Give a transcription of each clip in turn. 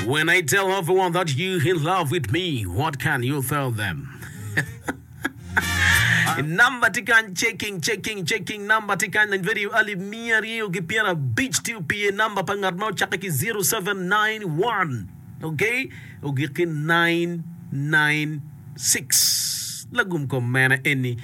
When I tell everyone that you in love with me, what can you tell them? Namba tye kany checking checking checking namba tye kany lany radio alip miya aryo ki pyera bic tye opiye namba pa ngat ma ocakke ki 0791 okay ogik ki 999 Six, Lagum kom mene eni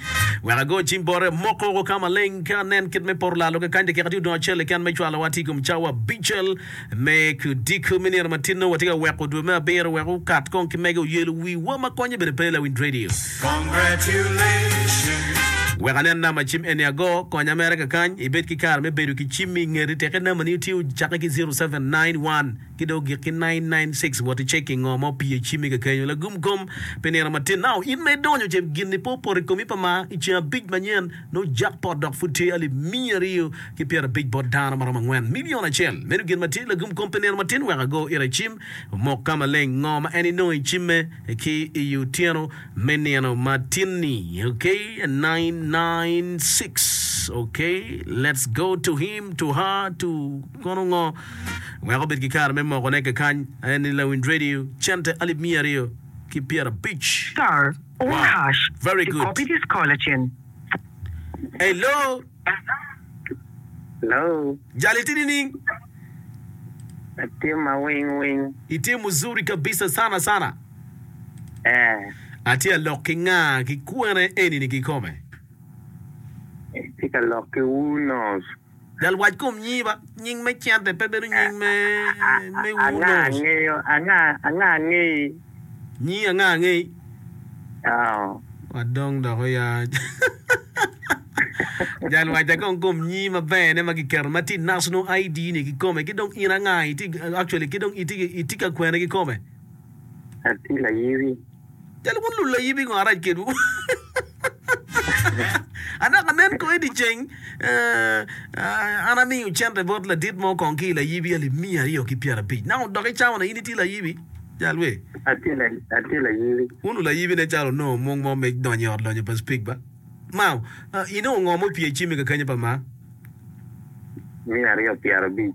wek ago cim bote moko oko ka maleng ka anen kit me poro lalo kakany tekeka tye odong acel keken me cwalo wa tye i kom cawa abicel me odiko me nino matino watye ka weko dwe me abiro wek okat kong ki mege oyelo wi wa ma konye bene pe lawiny radio Congratulations. Wek anen namba cim eni ago konya mere kakany ibed ki kare me bedo ki cimmi ingeti teke namba ni tye ocake ki zero seven nine one. ki dong ogik ki nine nine six wot iceki ngo ma opye icimi kekenyo lagum kom pi nino matin now in ma idonyo ce gini pe opoto ikomi pa ma iceng abic manyen nongo jackpot dok pud tye alip miya aryo ki pyera abic bot dano maromo angwen million acel meno gin matye lagum kom pi nino matin wek ago ira icim omok ka maleng ngo ma en inongo icime ki iyi otyeno me nino matin ni ok nine nine six ok let's go to him to her to Kono ngo weko obed ki kare me mokone kakany? Aye ni lawinj radio cente alip miya aryo ki pyera abic. Star or hash to copy this call acen. Hello. Hello. Jal itye nining? Atye ma wing wing. Itye muzuri kabisa sana sana. Eh. Atye alok ki nga ki kwene enini kikome? Itye ka lok ki Wunos. Lalwac kom nyiba, nying me cente pe bedo nying me me ur Anga nongo. angeyo, anga, anga angeyi. Nyingi anga angeyi. Oo. Wa dong dok oya. Jalwacca kong kom nyii maber ne ma giketo ma tye national ID ni kikome ki dong in anga iti actually ki dong iti iti ka kwene kikome. Ati layiwi. Cal wun lulayib i ngo arac kedwu? Adok anen kong i dyeceng, an amiyo cente bot ladit mo kong ki i layibi alip miya aryo ki pyerabic. Naka odok i cawa-na, in itye layibi? Jal we. Atye layibi. Wun lulayibi nen calo wunongo mung mo me donyo i Ot Lonyo pa Speke ba? Mao, inongo ngo ma opye i cimi kakenya pa Maa? Miya aryo pyerabic.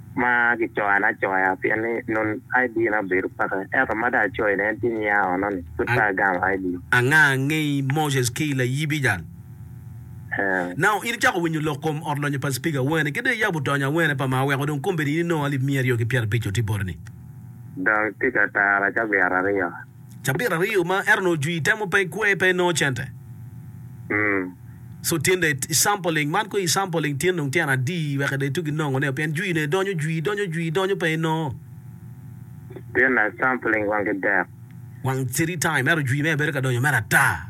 ma gicoyane acoya pien ni nun ID na obedo peke, ento ma dong acoyo ni en tye nying Aarona-ni, pud pe agamo ID. Anga angey Moses ki layibi jal? Ee. Now, in icako winyo lok kom ot lonyo pa Speaker Awene ki dong iyabo tony Awene pa ma aweko dong kombeddi in inongo alip miya aryo ki pyera abic-co tye botoni. Dong tika tara cabiat aryo? Cabit aryo ma ento nongo jwi temo pe kwe pe nongo cente. So tyen dong i sampling man kong i sampling tyen dong tyen adi wek dong itugi nongo ne pien jwi ne donyo jwi donyo jwi donyo pe nongo. Tyen na i sampling wang ki dek. Wang three time ento jwi mere bedo ka donyo mere ata.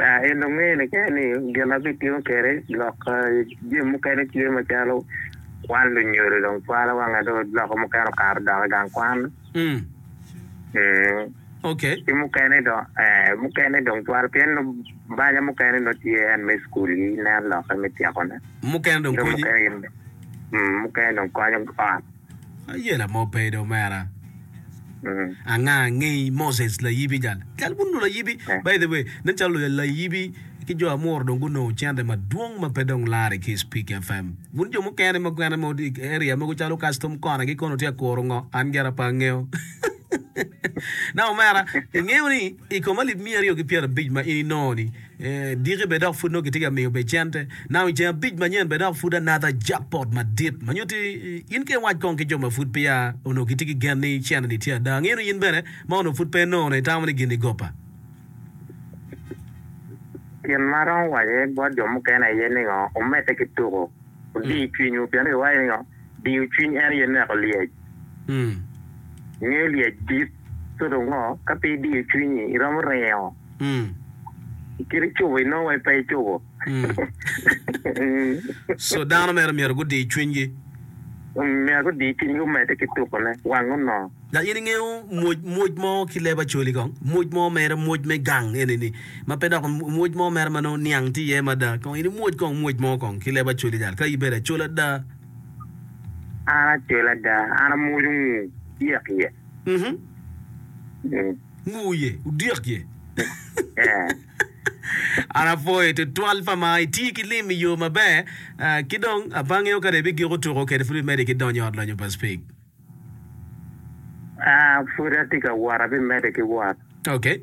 En dong ngeye keken ni gin ma bitiyo kwede lok jami mukene tye macalo kwan lunyodo dong cwalo wanga dong loko mukene okato dok i gang kwan ki mukene dong mukene dong cwalo pien nongo banya mukene nongo tye en me cukul gi nen lokke me tyekone mukene dong konyo ot. Aye lamo bed omera. Anga ngeyi Moses layibi jal kel bun lo layibi by the way nen calo lo layibi ki jo amuro dong gunongo cente madwong ma pe dong lare ki speak FM bun jo mukene ma gwene mo area mogo calo custom kona ki kono tye kuro ngo an gera pa ngeo na omera ingeyo ni i koma lip miya aryo ki pyera bic ma in inongo ni Diki bene dok pud nongo kitye ka miyo becente na i ceng abic manyen bene dok pud anadha jakpot madit ma nyutti in ki iwac kong ki jo ma pud peya onongo gitye ki gen ni cene-ni tye ada. Angino in bene ma onongo pud pe inongo ne itamo ni gin-ni goppa? Gin ma aromo waco bot jo mukene aye ningo, wumedde ki tuku, wudiy cwinywu pien iwaco ningo? Diyo cwiny en aye neko lyec. Ingeyo lyec dit toto ngo? Ka pe idiyo cwinyi, iromo ringo. I kite cubo inongo wai pe icubo. Co dano mere myero gudi cwinygi. Myero gudi cwinygi omedde ki tukone, wang onongo. Dok in ingeyo mwoc, mwoc mo ki leb Acholi kong, mwoc mo mere, mwoc me gang eni-ni, ma pe dok mwoc mo mere ma nongo niang tye iye mada, kong in imwoc kong mwoc mo kong ki leb Acholi jal, ka ibedo Acol ada. An Acol ada, an amwoco ngu dyek ye. Mm-hmm. Ngu ye, odyek ye. Yeah. An apwoyi tutwal pa ma iti ki lim i yo maber, ah, ki dong apange o kare ibigiko tuko kede pud imede ki donyo i ot lonyo pa Spig. Ah, pud atye ka wot, abimedde ki wot. Okay.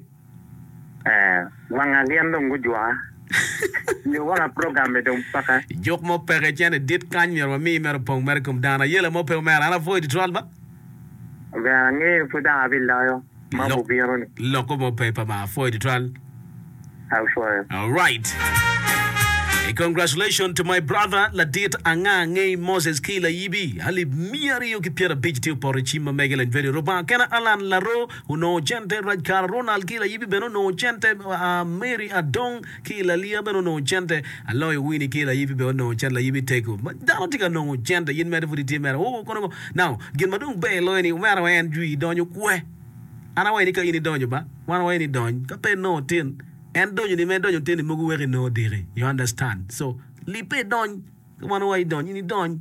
Eh, wanga gin dong gujwoka. Nyo wanga program-mi dong paka. Juk mo peke cene dit kany myero wami mere opong mere i kom dano. Ayela mo pe omera, an apwoyi tutwal ba. Ber angeyo pud dok abiloyo. ma Lok- gubino ni. Loko mo pe pa ma apwoyo tutwal. Apwoyo. All right. Hey, congratulations to my brother ladit anga ngei Moses ki layibi alip miya aryo ki pyera abic tye opoto icim ma mege lany veri Rubanga kena Alan Laro onongo cente Rajkara Ronald ki layibi bene onongo cente uh, Mary Adong ki i Lalia bene onongo cente, aloyo Winnie ki i Layibi bene onongo cente, Layibi tego ma dano tye ka nongo cente in mere pud itye mere oo kono ngo now gin ma dong ber loyo ni omera wa en jwi idonyo kwe an awayi ni ka in idonyo ba wan wawayi ni idony ka pe nongo tin en donyo ni ma idonyo tin ni mogo weko inongo diki you understand so libbe idony. Ka wan owaco idony, in idony.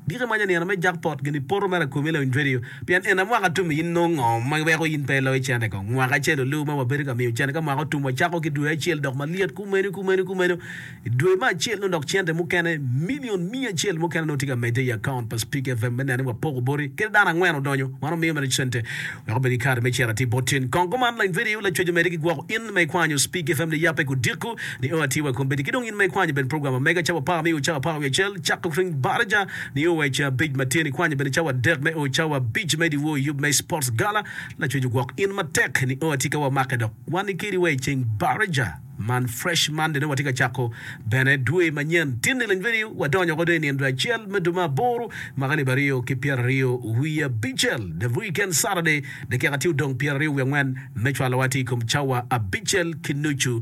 Giko imanyo nino me jackpot gin ipoto mere akobi Lounge Radio pien en aye mwaka tum in nongo ngo ma weko in pe iloyo cene kong mwaka acel olu ma wabedo ka miyo cene ka mwaka otum wacako ki dwe acel dok malyet kumeno kumeno kumeno idwe ma acel nongo dok cente mukene million miya acel mukene nongo tye ka medde i account pa Speak FM me neno ni wapoko boti kadi dano angwen odonyo wan wamiyo mere cente wek obed ki kare me cito atir bot cen kong kuman Lounge Radio lacwec omedi ki gwoko in ma ikwanyo Speak FM ni yape ku diko Nio atir wa kombeddi ki dong in ma ikwanyo bene program ma mega cawa par me o cawa par wiye acel cako ki ring baraja nio wa i cawa abic ma tye ni kwanyo bene cawa adek me o cawa abic me diwor i yub me sports gala lacwec ogwok in matek nio atika wa make dok wa ni kedi wa i ceng baraja man fresh Monday nio wa tye ka cako bene dwe ma nyen tinni leny bedi wa donyo ko dong i nino dwe acel me dwe ma aboro mwaka alib aryo ki pyera aryo wiye abicel the weekend Saturday dakika tye odong pyera aryo wiye angwen me cwalo wa tye i kom cawa abicel ki nucu